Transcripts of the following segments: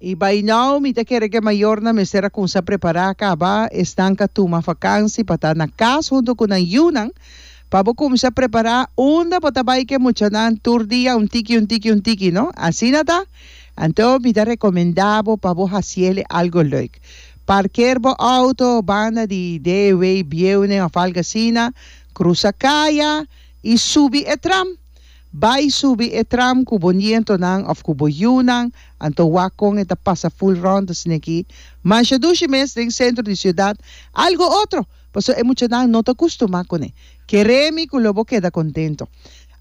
I bai nou mi ta kere ku e mayornan mester a kumsa prepará kaba esnan ka tuma vakansi pa ta na kas huntu ku nan yunan. Pa bo kumsa prepará unda bo ta bai ku e muchanan tur dia un tiki un tiki un tiki no. Asina ta? Anto mi ta rekomendá bo pa bo hasi ele algu lèuk. Parker bo outo banda di Dewey, Bieunen òf algu asina, krusa kaya i subi e tram. Bai subi e tram ku bo nientonan òf ku bo yiunan, anto wak kon e ta pasa ful ròndes niki. Mansha dushi mes den sentro di siudat, algu otro, pasobra e muchanan no ta kustumá kuné. Keremi ku lo bo keda kontento.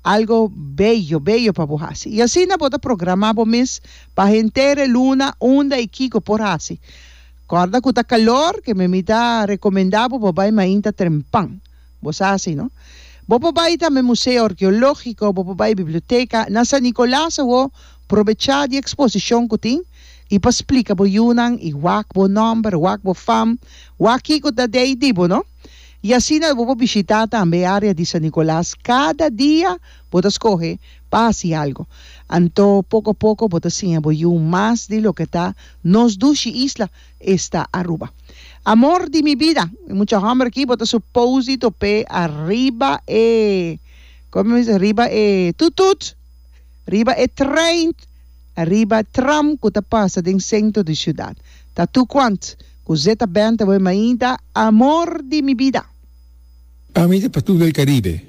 Algu beyo, beyo pa bo hasi. I asina bo ta programá bo mes pa henter e luna unda i kiko por hasi. Kòrda ku ta kalor, kememita rekomendá bo pa bai mainta trempan. Bo sa hasi, no? Bo por bai tambe Museo Arkeológiko, bo por bai biblioteka. Na San Nicolas awor, probechá di eksposishon ku tin i pa splika bo yunan i wak bo nòmber, wak bo fam, wak kiko ta dei di bo, no? I asina bo por bishitá tambe e área di San Nicolas. Kada dia bo ta skohe pa hasi algu. Anto, poko a poko bo ta siña bo yu mas di loke ta nos dushi isla. Esta Aruba. Amor di mi bida. E mucha homber aki bo ta suposi top'é ariba e, como mi dice, riba e tutut, riba e trein, riba tram cu ta pasa den centro di ciudad. Ta tu cuant cu Zeta Band ta bo e mainta Amor di mi bida. Pa mi ta pa tur del Caribe.